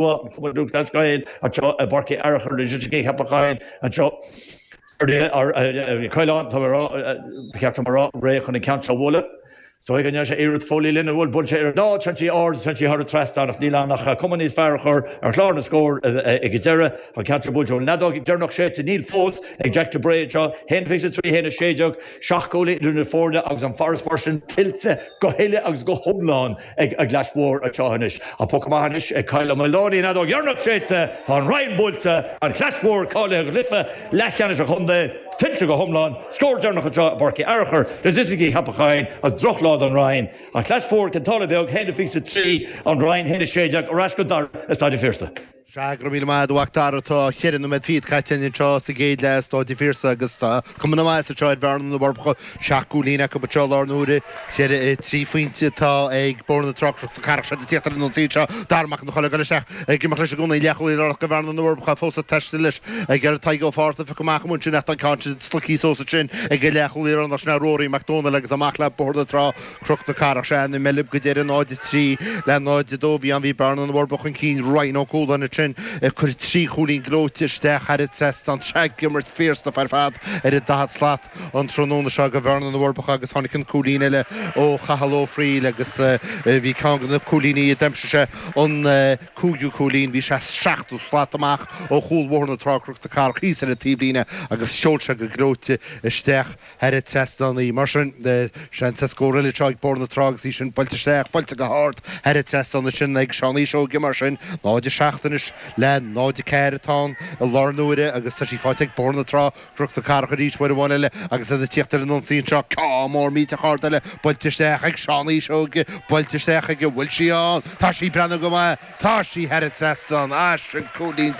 Chualamar Dubhghlas Gael anseo i bPáirc Uí Fhearchair Loighisticí Cheapach Choinn anseo ar an Chaoláin, tá mé rá, cheaptar mé rá, réidh chun an ceann seo a bhualadh. So ag an ndeis a iarraidh Foley linn a bhfuil bainte ar an tsean tí ard, tsean tí thoir trasna ach níl ann ach cuma níos fearr a chur ar chlár na scór ag an deireadh. An ceann seo buailte an fheadóg dheireanach séidte, níl fós ag Jack de Brae anseo, haon fiche a trí, haon a sé déag, seacht gcúilín idir na foirne agus an farasbarr sin tuillte go huile agus go hiomlán. ag an gClais Mhór anseo anois. An poc amach anois ag Kyle Ó Maoláin an fheadóg dheireanach séidte, tá an Rinn buailte, an Chlais Mhór cáilithe go cluiche leathcheannais an chontae, tuillte go hiomlán, scór deireanach anseo i bPáirc Uí Fhearachair Loighisticí Cheapach Choinn is droch lá don Rinn, an Chlais Mhór Cionn tSáile Beag, a haon fiche is a trí, an Rinn a haon a sé déag ar ais go Dara i Staid an Phiarsaigh. Sea, go raibh míle maith agat a Mhacdara. Tá cheithre noiméad fichead caite againn anseo sa gcéad leath i Staid an Phiarsaigh agus tá cuma na maitheasa seo ar Bhearna na bhForbacha. Seacht gcúilín acu anseo i láthair na huaire. Cheithre i trí phointe atá ag Bóthar na Trá Cnoc na Cathrach agus iad ag tíocht ar an ionsaí anseo, Darragh Mac an Choileáin ag dul isteach ag imeacht leis i gcónaí. Leathchúlaí de chuid Bhearna na bhForbacha fós ag taisteal leis ag iarraidh Tadhg Ó Fátharta a phiocadh amach amuigh ansin ach tá an ceann sin slogtha suas ansin ag an leathchúlaí láir ansin Ruairí Mac Dónaill agus amach le Bóthar na Trá Cnoc na Cathrach Sea na Meilb go deireadh, 0-3 le 0-2. Bhí an, bhí Bearna na bhForbacha chun cinn, Ryan Ó Cualáin ansin ag cur trí chúilín gleoite isteach thar an trasnán atá ag imirt fíorshlachtmhar ar fad ar an daichead slat an tráthnóna seo ag Bearna na bhForbacha agus tháinig an cúilín eile ó Chathal Ó Frighil agus bhí ceann de na cúilíní a d'aimsigh sé an cúigiú cúilín, bhí sé seachtó slat amach ó chúl Bhóthar na Trá Cnoc na Cathrach thíos ar an taobhlíne agus sheol sé go gleoite isteach thar an trasnán í. Mar sin, seans ar scór eile anseo ag Bóthar na Trá agus í sin buailte isteach, buailte go hard thar an trasnán ansin ag Seán Uí Seoige mar sin, 0-7 anois le 0-4 atá ann i láthair na huaire agus tá sí faighte ag Bóthar na Trá Cnoc na Cathrach arís uair amháin eile agus iad ag tíocht ar an ionsaí anseo. Ceann mór millteach ard eile buailte isteach ag Seán Uí Seoige, buailte isteach aige, bhfuil sí ann? Tá sí! Breathnú go maith. Tá sí thar an trasnán, agus sin cúilín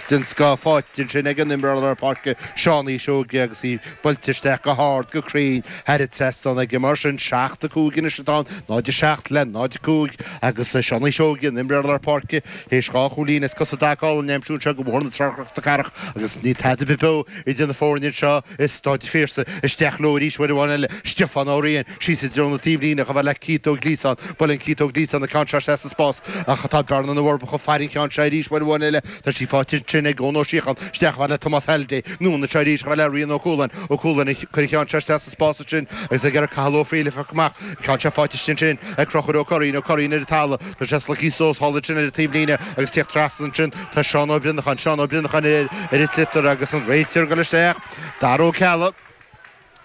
den scoth, faighte ansin ag an imreoir lár páirce Seán Uí Seoige agus í buailte isteach go hard, go cruinn, thar an trasnán aige. Mar sin, 7, 5 anois atá ann, 0, 7 le 0, 5, agus Seán Uí Seoige, an imreoir lár páirce, théis dhá chúilín as cosa i dtaca a aimsiú anseo do Bhóthar na Trá Cnoc na Cathrach agus níl tada ar bith beo Idir na foirne anseo i Staid an Phiarsaigh, isteach leo arís uair amháin eile, Stiofán Ó Riain, síos i dtreo na taobhlíne, á thabhairt le Keith Ó Gliasáin, buaileann Keith Ó Gliasáin an ceann seo isteach sa spás, ach tá Bearna na bhForbacha ag faire an ceann seo arís uair amháin eile, tá sí faighte ansin ag Eoin Ó Síocháin, isteach á thabhairt le Tomás Halliday, anonn anseo arís, á thabhairt le Rian Ó Cualáin, Ó Cualáin ag cur an ceann seo isteach sa. spás ansin agus ag iarraidh Cathal Ó Frighil a phiocadh amach ach tá sé faighte istigh ansin ag Conchúr Ó Curraoin, Ó Curraoin ar an talamh, tá sé slogtha suas thall ansin ar an taobhlíne agus ag tíocht trasna ansin tá Seán Ó Brionnacháin, Seán Ó Brionnacháin ar ar thit litir agus an réiteoir ag dul isteach, Dara Ó Ceallaigh,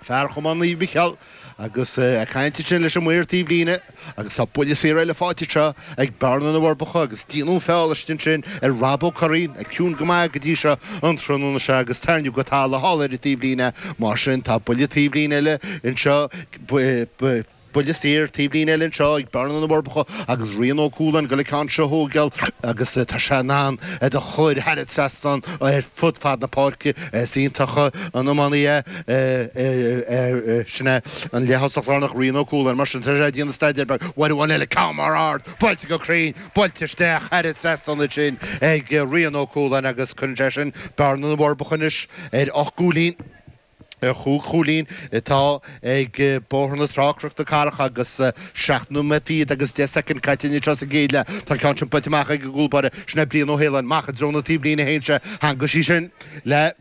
fear Chumann Naomh Micheál, agus ag caint ansin leis an maor taobhlíne. Agus tá buille saor eile faighte anseo ag Bearna na bhForbacha agus déanadh an feall istigh ansin ar Rob Ó Curraoin, atá ciúin go maith go dtí seo an tráthnóna seo agus tarraingíodh go talamh thall ar an taobhlíne. Mar sin tá buille taobhlíne eile anseo, buille saor taobhlíne eile anseo ag Bearna na bhForbacha agus Rian Ó Cualáin ag dul an ceann seo a thógáil agus tá sé in ann iad a chur thar an trasnán ar fud fad na páirce. Is iontach an iománaí é. Sin é an leath-thosach lárnach, Rian Ó Cualáin. Mar sin, tar éis déanamh staidéir beag uair amháin eile, ceann mór ard, buailte go cruinn, buailte isteach, thar an trasnán ansin ag Rian Ó Cualáin agus cuireann sé sin Bearna na bhForbacha anois ar ocht gcúilín, ar chúig chúilín, atá ag Bóthar na Trá, Cnoc na Cathrach agus seacht nóiméad fichead agus deich soicind caite anseo sa gcéad leath, tá an ceann sin buailte amach ag an gcúl báire, sin é Brian Ó hAoláin. Amach i dtreo na taobhlíne a théann sé, theangaigh sí sin. le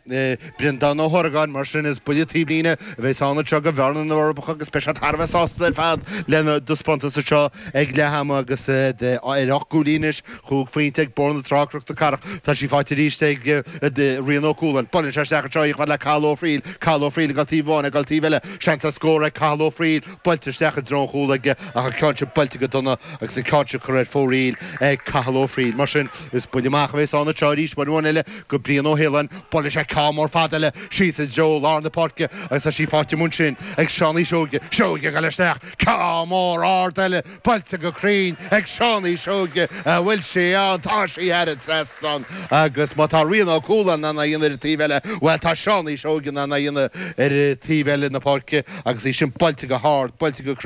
Breandán Ó hOrgáin, mar sin is buille taobhlíne a bheas ann anseo go Bhearna na bhForbacha agus beidh siad thar a bheith sásta ar fad lena dtaispeántas anseo ag leath ama agus iad ar ocht gcúilín anois, chúig phointe ag Bóthar na Trá Cnoc na Cathrach, tá sí faighte arís ag Rian Ó Cualáin, buaileann sé isteach anseo í chuig Cathal Ó Frighil, Cathal Ó Frighil ag dul taobh amháin, ag dul taobh eile, seans ar scór ag Cathal Ó Frighil, buailte isteach i dtreo an chúil aige ach an ceann sin buailte go dona agus an ceann sin curtha ar fóraoil ag Cathal Ó Frighil, mar sin is buille amach a bheas ann anseo arís, uair amháin eile. Go Brian Ó hAoláin, buaileann sé ceann mór fada eile síos i dtreo lár na páirce agus tá sí faighte amuigh ansin ag Seánaí Seoige, Seoige ag dul isteach, ceann mór ard eile buailte go cruinn ag Seánaí Seoige, an bhfuil sí ann, tá sí thar an trasnán agus má tá Rian Ó Cualáin in ann é a dhéanamh ar an taobh eile, bhuel tá Seánaí Seoige in ann é a dhéanamh ar an taobh eile na páirce agus í sin buailte go hard, buailte go.